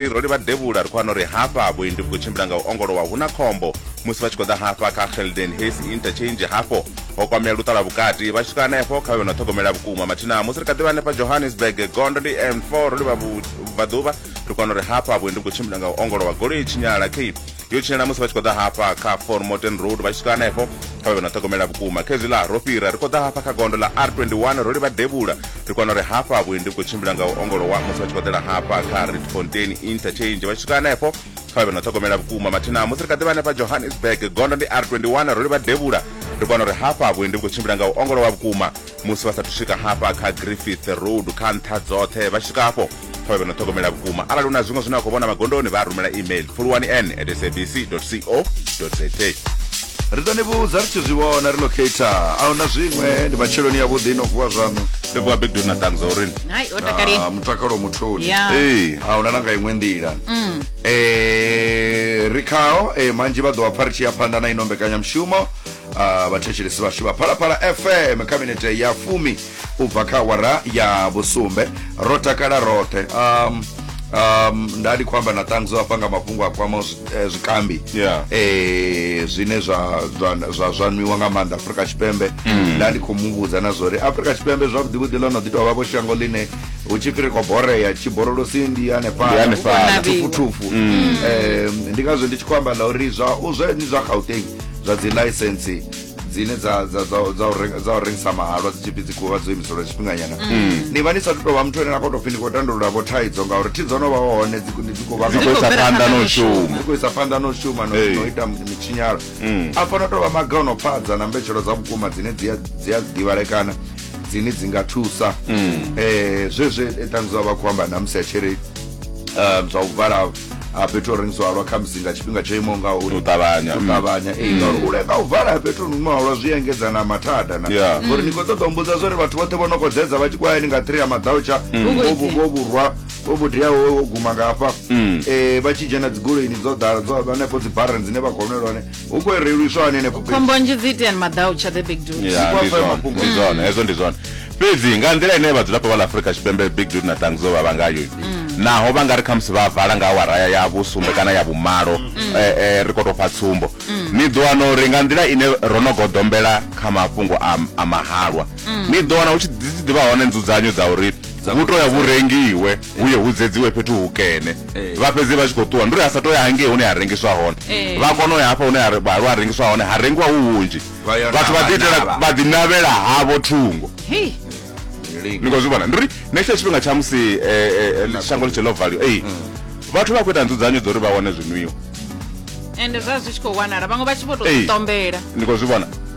Ri ro livha devhula ri khou wana uri hafha vhuendi vhu khou tshimbila nga u ongolowa hu na khombo musi vha tshi khou ḓa hafha kha Gelden Hayes Interchange hafho ho kwamea luṱa lwa vhukati vha tshi swika hanefho kha vhe no ṱhogomela vhukuma mathina musi ri kha ḓivha hanefha Johannesburg gondo ndi N4 ro livha vhubvaḓuvha ri kwana uri hafha vhuendi vhu khou tshimbila nga u ongolowa goloi tshinyala key yo tshinyala musi vha tshi khou ḓa hafha kha fon morton road vha tshi swika hanefho kha vha vhe na ṱhogomela vhukuma khezwi ḽa ro fhira ri khou ḓa hafha kha gondo ḽa r21 ro livha devhula ri kwana uri hafha vhuendi vhu khou tshimbila nga u ongolowa musi vha tshi khou ḓela hafha kha redfontain interchange vha tshi swika hanefho kha vha vhe na ṱhogomela vhukuma mathina musi ri kha ḓivha hanefha johannesburg gondo ndi r21 ro livha devhula ri kwana uri hafha vhuendi vhu khou tshimbila nga u ongolowa vhukuma musi vha sathu swika hafha kha griffith road kha nṱha dzoṱhe vha tshi swika hafho pfa vhe no ṱhogomela vhukuma arali u na zwiṅwe zwine wa khou vhona magondoni vha a rumela email pfuluwani n at sabc co za ri ḓo ni vhudza ri tshi zwi vhona ri locator a huna zwiṅwe ndi matsheloni ya vhuḓi no vuwa zwaṋu ri vuwa big dona ṱangza urini hai o takali Ah, mutakalo mutholi Ya. Ee. a huna na nga iṅwe nḓila Mm. Eh, ri khao eh, manzhi vha ḓo vha pfa ri tshi ya phanḓa na ino mbekanyamushumo Ah, vhathetshelesi vhashu vha phalaphala fm khabinete ya fumi u bva kha awara ya vhusumbe ro takala roṱhe um, um, nda ndi khou amba na ṱangzo afha nga mafhungo a kwamaho zwi- eh, zwikambi Yeah. eh, zwine zwa, zwa, zwa, zwa nwiwa nga maanḓa afurika tshipembe nda ndi khou mu vhudza na zwori afurika tshipembe zwavhuḓivhuḓi ḽo no ḓi tou vha vho shango ḽine hu tshi fhiri khou borea tshiborolosi ndi Ndi hanefhala hanefhala. thufuthufu um, ndi ngazwo ndi tshi khou amba na uri zwa u zwe ni zwa gauteng zwa dzi license dzine dza dza dza dza u renga- dza u rengisa mahalwa dzi tshi pfi dzi khuvha dzo imiselwa tshifhinganyana Mm. ni vha ni sa tu tovha muthu ane na khou tou pfi ni khou tandulula vho thaidzo ngauri thi dzo no vha hone dzi khou- dzi khou vha Dzi khou isa phanḓa na u shuma. dzi khou isa phanḓa na u shuma na Hey. na u ita mitshinyalo Mm. a fana tovha maga o no pfadza na mbetshelo dza vhukuma dzine dzi a- dzi a ḓivhalekana dzine dzi nga thusa Mm. eh zwezwe tanzwa vha khou amba na musi a tshiri um zwa u vala ha fhethu ho rengiswa halwa kha musi nga tshifhinga tsho imaho nga uri u ṱavhanya u mm. ṱavhanya ee ngauri mm. u lenga u vala ha fhethu no imaho halwa zwi engedza na mathada na ngori ni khou ṱoḓa umbudza zwa uri vhathu vhoṱhe vho no khou dzedza vha tshi khou hayani nga three ya maḓautsha vho vhurwa vho vhudiaho wo guma nga hafha um vha tshi dzhena dzigoloini dzo ḓala dzo hanefho dzi barren dzine vha khou nwe lwane hu khou reliswa hani henefho fhethu? khombo nzhi dzi iteani maḓau tsha the big dude Ya, Zwi ndi kwafha zwone, mafhungo. ndi zwone hezwo ndi zwone fhedzi nga nḓila ine vhadzulapo vha ḽa afurika tshipembe big dude na tangizo vha vha ngayo naho vha nga ri khamusi vha vala nga awara ya- ya vhusumbe kana ya vhumalo eh, eh, ri khou tou fha tsumbo ni ḓo wana uri nga nḓila ine ro no goḓombela kha mafhungo a, a mahalwa ni ḓo wana hu tshi dzi tshi ḓivha hone nzudzanyo dza uri hu to ya vhu rengiwe hu ye hu dzedziwe fhethu hukene eh. vha fhedzi vha tshi khou ṱuwa ndi uri a sa to ya hangei hune ha rengiswa hone eh. vha kona u ya hafha hune halwa ha rengiswa hone ha rengiwa hu hunzhi vhathu vha ḓiitela vha ḓinavhela havho thungo ni khou zwi vhona ndi uri na itsho tshifhinga tsha musi eh, shango ḽi tshe ḽo valiwa ei mm. vhathu vha khou ita nzudzanyo dza uri vha wane zwinwiwa ende zwa zwi tshi khou wanala vhaṅwe vha tshi vho tou ṱombela ni khou zwi vhona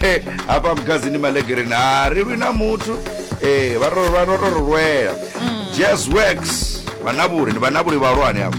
Eh, hafha mugazini malegereni ha ri lwi na muthu Eh, vha ro- vha ro to ri lwela jazz works vanavhuri ndi vanavhuri vhahulwane avo